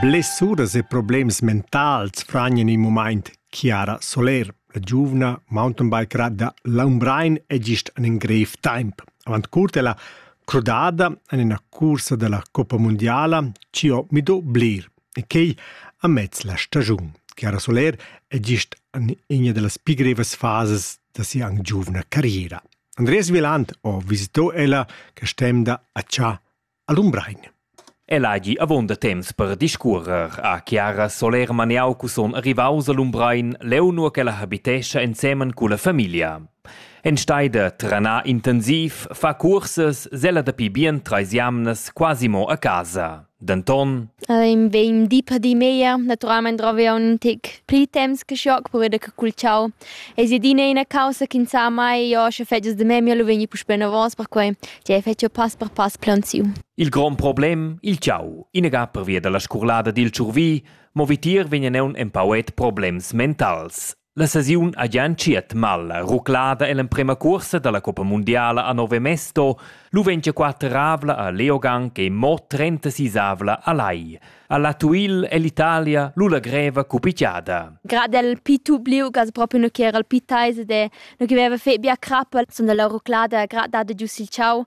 Blessuras e problems mentals fragnan in mumaint Chiara Soler. La giuvna mountainbiker da Laumbrein è gist en in grev temp. Avant curt è la crudada en ina cursa da la Coppa Mondiala ci ho mido blir e quei amez la stagiun. Chiara Soler è gist en ina delle più grevas fases da sia anc giuvna carriera. Andreas Viland ho visito ella quest'emda a Cha a Lumbrein. El hagi avon da temps per discuorer a Chiara Soler Maneau cuson arrivaus a Lumbrein leu nua ch'ella habitescha ensemen culla famiglia. En steida trana intensiv fa cursas sella dapi bien treis jamnas quasi mo a casa. Denton Ehm, vegn di per di meglier. Naturalmein drovi aunc in tic pli temps che schoc per veder che cul ciao. Ei si adina ina causa che sa mai, io sche fetgias de memia lu vegni puspei novos, perquei che fetgio pass per pass plaunsiu. Il grond problem, il ciao, inaga pervia dalla scurlada dil tschurvi, mo vitier vegnan aunc empauet problems mentals. La sesiun ha gia entschiet mal. Ruclada ell'emprema cuorsa dalla coppa mundiala a Nove Mesto. Lu vegn gia quateravla a Leogang e mo trentasisavla a Lai. Alla Tuil è l'Italia lu la greva cupicchiada. Grad el pitu bliu gas proprio no che era il pitaise de no che veva fe bia crappa, son dalla ruclada grad dade giu sil ciao.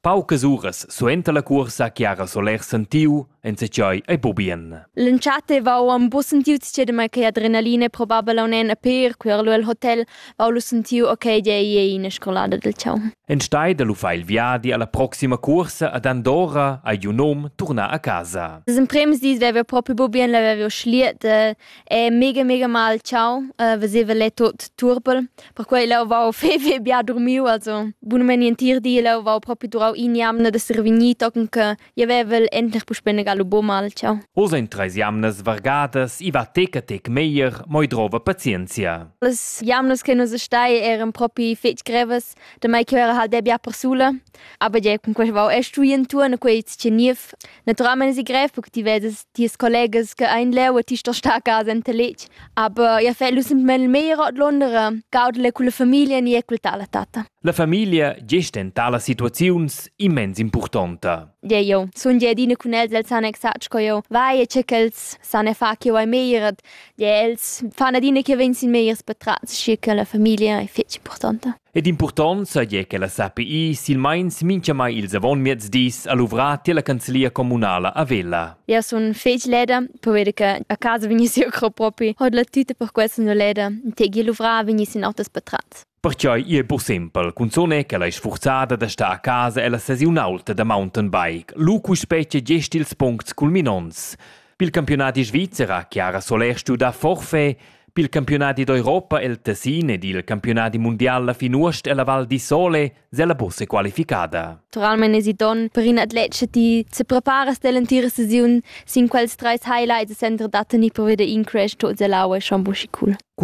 Paucas uras suenter la cuorsa che ha Soler sentiu enzatgei ei bubien. L'entschatta vau am bu sentiu tschedema che adrenalina probabel aun en a per quer lu el hotel vau lu sentiu ok dei ei ina scolada del ciao. Enstei da lu fa il viadi alla proxima cuorsa ad Andorra ei un nom turnar a casa. Das im premis dis vevo proprio bubien, la vevo schliet, E mega, mega mal ciao, uh, veseva lei tot turbel. Perquei leu vau fei, fei bia durmiu, also bunamain entir di leu vau propi durau in'jamna da survegnir, tochen che jeu vevel endlich puspei negal buca mal ciao. Oz ein treis jamnas vargadas, i va tec a tec meglier, moi drova pazienzia. Las jamnas che nus stai eran propi fetg grevas, da mai che era halt bia persula. A veder cun quest vau è stui entuorn quei tscheniv. Naturalmein si grev perché ti vedes ties collegas che ein leu e ti sto star a casa enta letg. Aber ja fai lu semplamein meglier ord Londra, gaudele con la famiglia ni e col tar la tatta. La famiglia gest en tala situaziuns immens impurtonta. Де io, sun gie adina cun els, els san exact co io vai e che ch'els san e fa che io ai meglier. Де els fan adina che vegn sin megliers patrats, schi che la famiglia è fetg importanta. Ed impurtont seigi che la SAPI silmeins mintgamai ils avonmiezdis ha luvrà tier la canzlia communala a Vella. Io sun fec leda, poveda che a casa vegnissi eu cro propi, hod la tüta per questa no leda, tegi luvrà vegnissi in autas patratz. Perciò è pur simpel, cunzone che la sforzada da sta a casa e la sesiun alta da mountainbike. Lu cu specie gest ils puncts culminonts. Pil campiunadi svizzer Chiara Solèr studa forfait, pil campiunadi d'Europa el Tessin ed il campiunadi mundial la fin uost ella Val di Sole sella busse qualificada. Naturalmein esi donn per in atlet che ti se preparas dell'entira sesiun sin quels treis highlights e center da tener per veder in crash tot ella aua schon buschi cool.